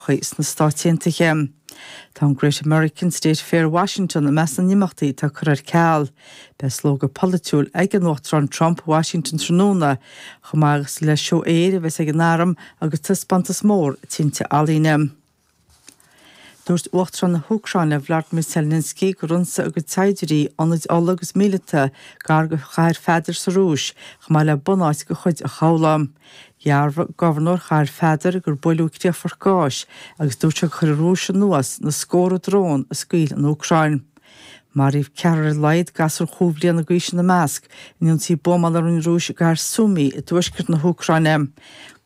chuí sna Stáit Aontaithe. Tá an Great American State Fair Washington i measc na n-imeachtaí atá curtha ar ceal. Beidh slógadh polaitiúil ag an Uachtarán Trump i Washington tráthnóna, chomh maith agus le seó aeir a bheas ag an arm agus taispeántas mór tinte ealaíne. Dúirt Uachtarán na hÚcráine Vladimir Zelensky gur ionsaigh a gcuid saighdiúirí, ionaid ola agus míleata gar do Chathair Pheadair sa Rúis, chomh maith le bunáit de chuid an chabhlaigh. Dhearbhaigh Gobharnóir Chathair Pheadair gur buaileadh críochfort gáis agus dúirt sé gur chuir an Rúis anuas na scórtha drón a scaoil an Úcráin. Maraíodh ceathrar ar a laghad, gasúr chúig bhliana d'aois ina measc, in ionsaí buamála a rinne an Rúis i gcathair Sumy i dtuaisceart na hÚcráine.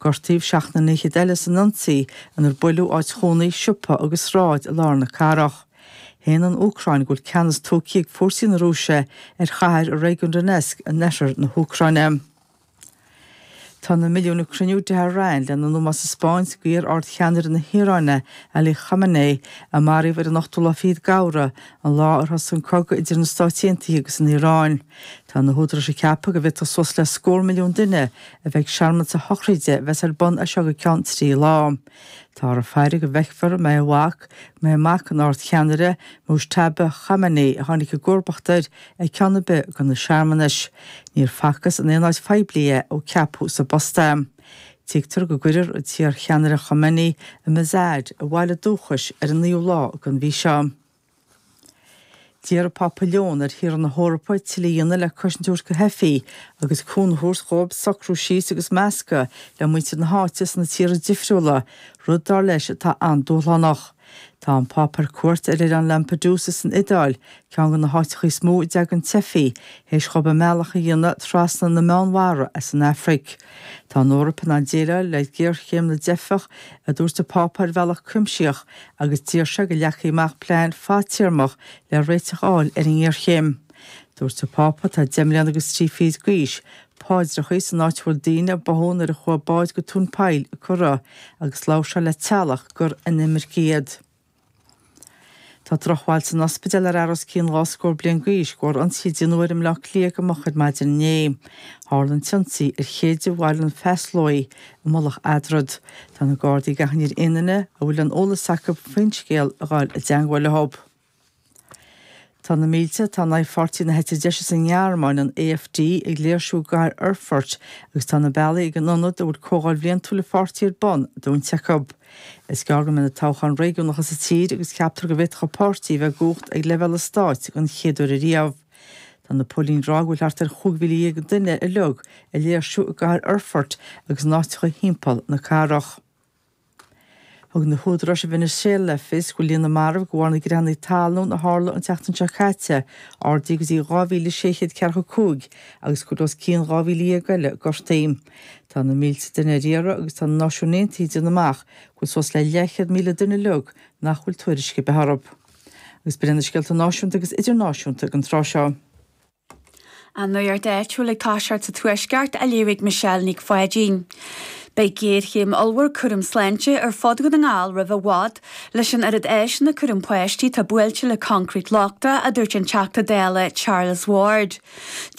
Gortaíodh seacht nduine fichead eile san ionsaí inar buaileadh áit chónaithe, siopa agus sráid i lár na cathrach. Shéan an Úcráin go bhfuil ceannas tógtha ag fórsaí na Rúise ar chathair i réigiún Donetsk in oirthear na hÚcráine. Tá na milliúin ag cruinniú i dTehran lena n-ómós a thaispeáint d'iar-ardcheannaire na hIaráine, Ali Khamenei, a maraíodh ar an ochtú lá fichead d'Fheabhra, an lá ar thosaigh an cogadh idir na Stáit Aontaithe agus an Iaráin. Tá na húdaráis ag ceapadh go bhféadfadh suas le scór milliún duine a bheith ag searmanas a shochraide a bheas ar bun as seo go ceann trí lá. Táthar ag faire go bhfeicfear an mbeidh a mhac, an mbeidh mac an Ardcheannaire Mojtaba Khamenei a tháinig i gcomharbacht air ag ceann ar bith de na searmanais. Níor facthas in aon áit phoiblí é ó ceapadh sa bpost é. Tuigtear go gcuirfear an t-iarcheannaire Khamenei i Mashhad, a bhaile dúchais, ar an naoú lá den mhí seo. D'iarr an Pápa Leon ar thíortha na hEorpa tuilleadh a dhéanamh le cosaint a thabhairt do theifigh, agus cúnamh a thabhairt dhóibh socrú síos agus meascadh le muintir na háite sna tíortha difriúla, rud, dar leis, atá an-dúshlánach. Tá an Pápa ar cuairt ar oileán Lampedusa san Iodáil, ceann de na háiteacha is mó a dteagann teifigh, théis dhóibh a mbealach a dhéanamh trasna na Meánmhara as an Afraic. Tá an Eoraip in ann déileáil le géarchéim na dteifeach, a dúirt an Pápa ar bhealach cuimsitheach agus d'iarr sé go leagfaí amach plean fadtéarmach le réiteach a fháil ar an ngéarchéim. Dúirt an Pápa, atá deich mbliana agus trí fichid d'aois, paidreacha, san áit a bhfuil daoine a báthadh nuair a chuaigh bád go tóin poill curtha agus labhair sé le teaghlach gur inimircigh iad. Tá drochbhail san ospidéal ar fhear os cionn dhá scór bliain d'aois de bharr ionsaí a deineadh air i mBleá Cliath go moch ar maidin inné. Tharla an t-ionsaí ar Chéide Bhaile an Phasláigh i Mullach Eadrad. Tá na Gardaí ag achainí ar aon duine a bhfuil aon eolas acu faoin scéal a ghabháil i dteangmháil leo. Tá na mílte atá in aghaidh pháirtí na heite deise sa nGearmáin, an AfD, ag léirsiú i gcathair Erfurt agus tá na bealaí ag an ionad a bhfuil comhdháil bhliantúil an pháirtí ar bun dúinte acu. Is gearr go mbeidh na toghcháin réigiúnacha sa tír agus ceaptar go bhféadfadh an páirtí a bheith i gcumhacht ag leibhéal an stáit den chéad uair ariamh. Tá na póilíní ag rá go bhfuil thart ar chúig mhíle dhéag duine uilig ag léirsiú i gcathair Erfurt agus in áiteacha thimpeall na cathrach. Thug na húdaráis i Veiniséala le fios go bhfuil líon na marbh de bharr na gcreathanna talún a tharla an tseachtain seo caite ardaithe go dtí 2,600 ceathracha a cúig agus go bhfuil os cionn 12,000 eile gortaithe. Tá na mílte duine ar iarraidh agus tá na Náisiúin Aontaithe ag déanamh amach go bhfuil suas le leathchéad míle duine uilig nach bhfuil tuairisc ar bith orthu. Agus b'in iad na scéalta náisiúnta agus idirnáisiúnta ag an tráth seo. An nuacht áitiúil ag toiseacht sa Tuaisceart, á léamh ag Michelle Nic Pháidín. Beidh géarchéim ollmhór cúraim sláinte ar fud Dhún na nGall roimh i bhfad, leis an oiread áiseanna cúraim páistí atá buailte le coincréit lochtach, a dúirt an Teachta Dála Charles Ward.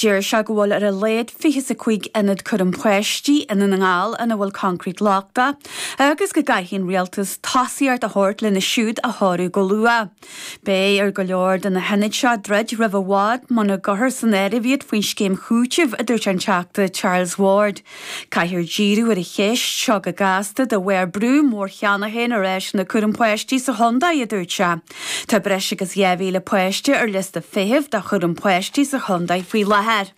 Deir sé go bhfuil ar a laghad fiche is a cúig ionad cúraim páistí i nDún na nGall ina bhfuil coincréit lochtach, agus go gcaithfidh an Rialtas tosaíocht a thabhairt lena siúd a chóiriú go luath. Beidh ar go leor de na hionaid seo druidim roimh i bhfad muna gcuirthear san áireamh iad faoin scéim chúitimh, a dúirt an Teachta Charles Ward. Caithfear díriú ar an cheist seo go gasta de bharr brú mór cheana féin ar áiseanna cúraim páistí sa chontae, a dúirt sé. Tá breis agus 2,000 páiste ar liosta feithimh do chúram páistí sa chontae faoi láthair.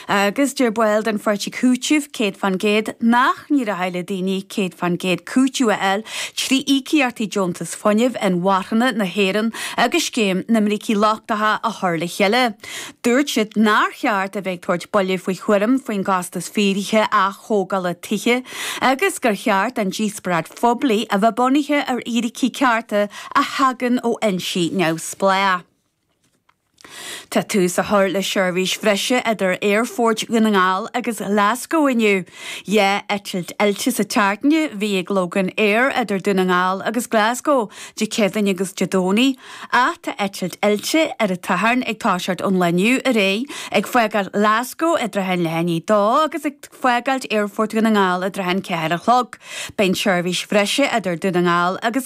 Agus deir baill den pháirtí Cúiteamh 100 faoin gcéad nach dtig le daoine 100 faoin gcéad cúiteamh a fháil trí íocaíochtaí Deontas Fuinnimh Inmharthana na hÉireann agus Scéim na mBrící Lochtacha a chur le chéile. Dúirt siad nár cheart a bheith ag tabhairt buille faoi thuairim faoin gcostas fíor atá le hatógáil tithe agus gur cheart an díospóireacht phoiblí a bheith bunaithe ar fhíricí cearta a thagann ó fhoinsí neamhspleách. Tá tús á chur le seirbhís bhreise idir Aerfort Dhún na nGall agus Glaschú inniu. Dhá eitilt fhillte sa tseachtain a bhí ag Loganair idir Dún na nGall agus Glaschú, Dé Céadaoin agus Dé Domhnaigh, ach tá eitilt fhillte ar an tSathairn ag toiseacht ón lá inniu ar aghaidh, ag fágáilt Ghlaschú i dtrátha an leath i ndiaidh a dó agus ag fágáilt Aerfort Dhún na nGall i dtrátha an ceathair a chlog. Beidh an tseirbhís bhreise idir Dún na nGall agus.